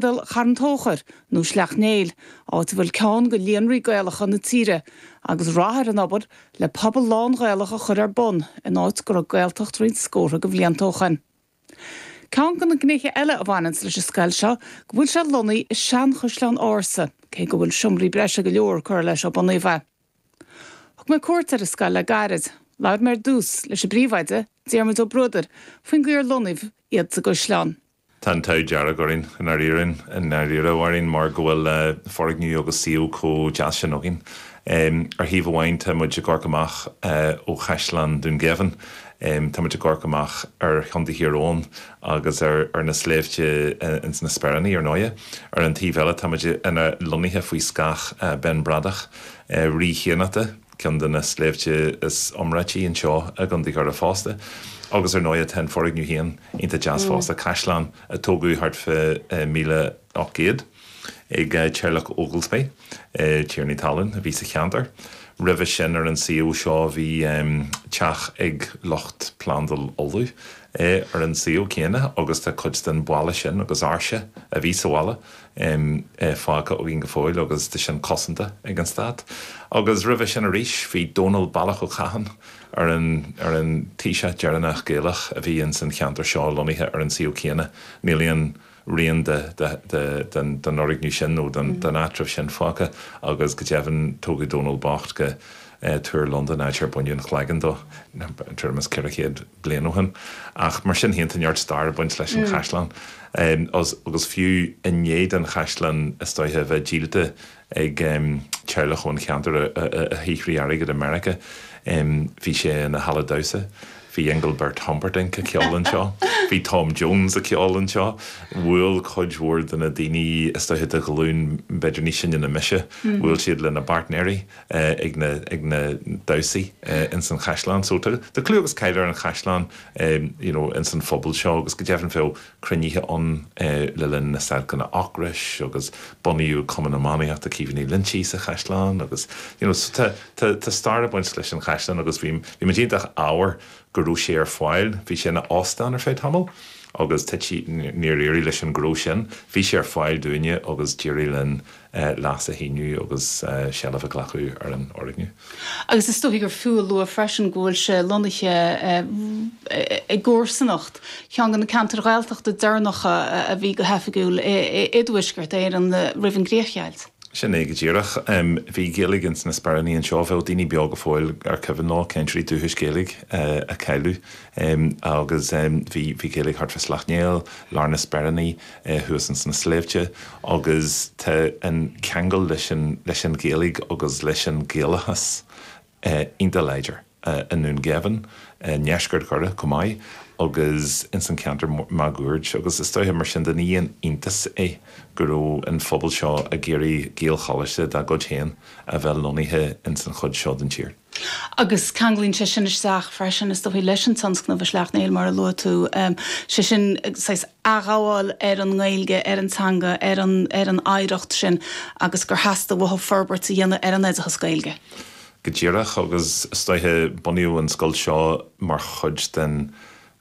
bhfuil Carn Tóchair nó Sleacht Néill, áit a bhfuil ceann de líonraí Gaelacha na tíre, agus rath ar an obair le pobal lán-Ghaelach a chur ar bun in áit go raibh Gaeltacht roinnt scórtha de bhlianta ó shoin. Ceann de na gnéithe eile a bhaineanns leis an scoil seo go bhfuil sé lonnaithe i seanchaisleán ársa, cé go bhfuil seomraí breise go leor curtha leis ó bunaíodh é. Thug mé cuairt ar an scoil le gairid. Labhair mé ar dtús leis an bpríomhoide, Diarmuid Ó Bruadair, faoin gcaoi ar lonnaíodh iad sa gcaisleán. Tá an t-ádh dearg orainn i ndáiríre, i ndáiríre orainn mar go bhfuil foirgneamh agus suíomh chomh deas sin againn. Ar thaobh amháin tá muid ag amharc amach ó Chaisleán Dún Geimhin, tá muid ag amharc amach ar Chontae Thír Eoghain agus ar na sléibhte ins na Speiríní ar ndóighe. Ar an taobh eile tá muid lonnaithe faoi scáth Ben Bradach, rí Chiannachta. Ceann de na sléibhte is iomráití anseo i gContae Dhoire fosta. Agus ar ndóighe, tá an foirgneamh féin iontach deas fosta, caisleán a tógadh thart fá míle ocht gcéad ag teaghlach Ogilby, tiarnaí talún a bhí sa cheantar. Roimhe sin ar an suíomh seo bhí teach ag lucht Plandáil Uladh ar an suíomh céanna agus tá cuid den bhalla sin agus áirse a bhí sa bhalla um fágtha againn go fóill agus tá sin cosanta ag an Stát. Agus roimhe sin arís bhí Dónal Ballach Ó Catháin ar an ar an Taoiseach deireanach Gaelach a bhí ins an cheantar seo lonnaithe ar an suíomh céanna. Níl aon rian de de de den den fhoirgneamh sin nó den den áitreabh sin fágtha agus go deimhin tógadh Dónal bocht go eh Túr Londan áit ar baineadh an chloigeann dó tuairim is ceithre chéad bliain ó shin. Ach mar sin féin, tá neart stair ag baint leis an chaisleán agus fiú i ndiaidh don chaisleán is dóiche a bheith díolta ag teaghlach ón cheantar a shaothraigh airgead i Meiriceá, bhí sé ina halla damhsa. Bhí Engelbert Humperdinck ag ceol anseo, bhí Tom Jones ag ceol anseo, bhuail cuid mhór de na daoine is dóiche de ghlúin b'fhéidir níos sine ná mise, bhuail siad lena bpáirtnéirí. ag na damhsaí ins an chaisleán. So tá clú agus cáil ar an chaisleán you know ins an phobal seo agus go deimhin bhíodh cruinnithe ann le linn na stailceanna ocrais agus bunaíodh Cumann Iománaíochta Caoimhín Uí Loingsigh sa chaisleán agus you know so tá tá stair ag baint leis an chaisleán agus bhí bhí muid iontach ádhmhar go raibh sé ar fáil. Bhí sé ina óstán ar feadh tamaill agus toisc nár éirigh leis an gnó sin. Bhí sé ar fáil dúinne agus d'éirigh linn léas a shíniú agus seilbh a ghlacadh ar an fhoirgneamh. Agus is dóichí gur fiú a lua freisin go bhfuil sé lonnaithe i gcomharsanacht cheann de na ceantair Ghaeltachta deireanacha a bhí go hoifigiúil i dTuaisceart Éireann roimh an gcríochdheighilt. Sin é go díreach. Bhí Gaeilge ins na Speiríní anseo. Bheadh daoine beo go fóill ar cuimhin leo cainteoirí dúchais Gaeilge a cailleadh. Agus bhí Gaeilge thart fá Sleacht Néill, lár na Speiríní, é thuas ins na sléibhte agus tá an ceangal leis an, leis an Ghaeilge agus leis an Ghaelachas iontach láidir i nDún Geimhin, i ndeisceart Dhoire chomh maith agus ins an ceantar máguaird agus is dóiche mar sin de ní haon iontas é go raibh an phobal seo ag iarraidh Gaelcholáiste dá gcuid féin a bheith lonnaithe ins an chuid seo den tír. Agus ceanglaíonn sé sin isteach freisin is dóiche leis an tionscnamh i Sleacht Néill mar a luaigh tú, sé sin saghas, athghabháil ar an nGaeilge, ar an teanga, ar an ar an oidhreacht sin agus gur theastaigh uathu forbairt a dhéanamh ar an oideachas Gaeilge. Go díreach agus is dóiche bunaíodh an scoil seo mar chuid den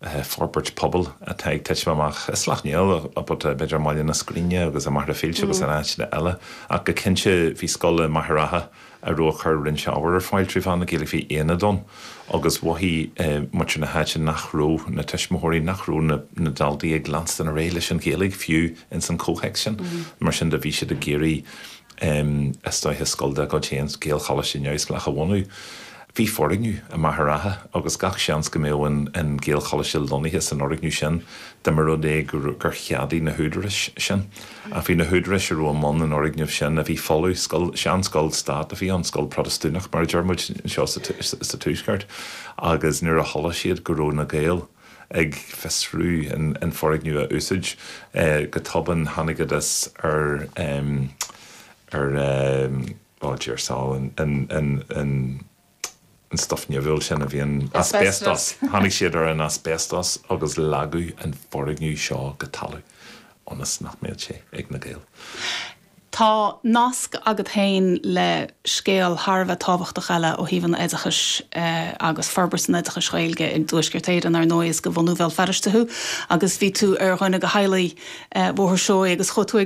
forbairt pobail atá ag titim amach i Sleacht Néill, b'fhéidir i mBaile na Scríne agus i Machaire Fíolta agus in áiteanna eile ach go cinnte bhí scoil i Machaire Rátha, a raibh ag cur roinnt ábhair ar fáil trí mheán na Gaeilge. Bhí aonad ann agus mhothaigh muintir na háite nach raibh na tuismitheoirí, nach raibh na daltaí ag leanstan ar aghaidh leis an Ghaeilge fiú ins an chomhthéacs sin. Mar sin de bhí siad ag iarraidh is dóiche scoil dá gcuid féin, Gaelcholáiste neamhspleách, a bhunú. Bhí foirgneamh i Machaire Rátha agus gach seans go mbeadh an Gaelcholáiste lonnaithe san fhoirgneamh sin dá mba rud é gur cheadaigh na húdaráis sin. Ach bhí na húdaráis a raibh i mbun an fhoirgnimh sin a bhí folamh, scoil, seanscoil stáit a bhí ann, scoil Protastúnach mar a deir muid anseo sa Tuaisceart, agus nuair a chuala siad go raibh na Gaeil ag fiosrú an foirgneamh a úsáid, go tobann thángthas ar, ar, bhuel, deir siad, an. an stuif nimhiúil sin a bhíonn, asbestos, tháinig siad ar an asbestos agus leagadh an foirgneamh seo go talamh ionas nach mbeadh sé ag na Gaeil. Tá nasc agat féin le scéal thar a bheith tábhachtach eile ó thaobh an oideachais agus forbairt an oideachais Ghaeilge i dTuaisceart Éireann, ar ndóigh, is de bhunadh Bhéal Feirste thú agus bhí tú ar dhuine de theaghlaigh Bhóthar Seoighe agus chuaigh tú ag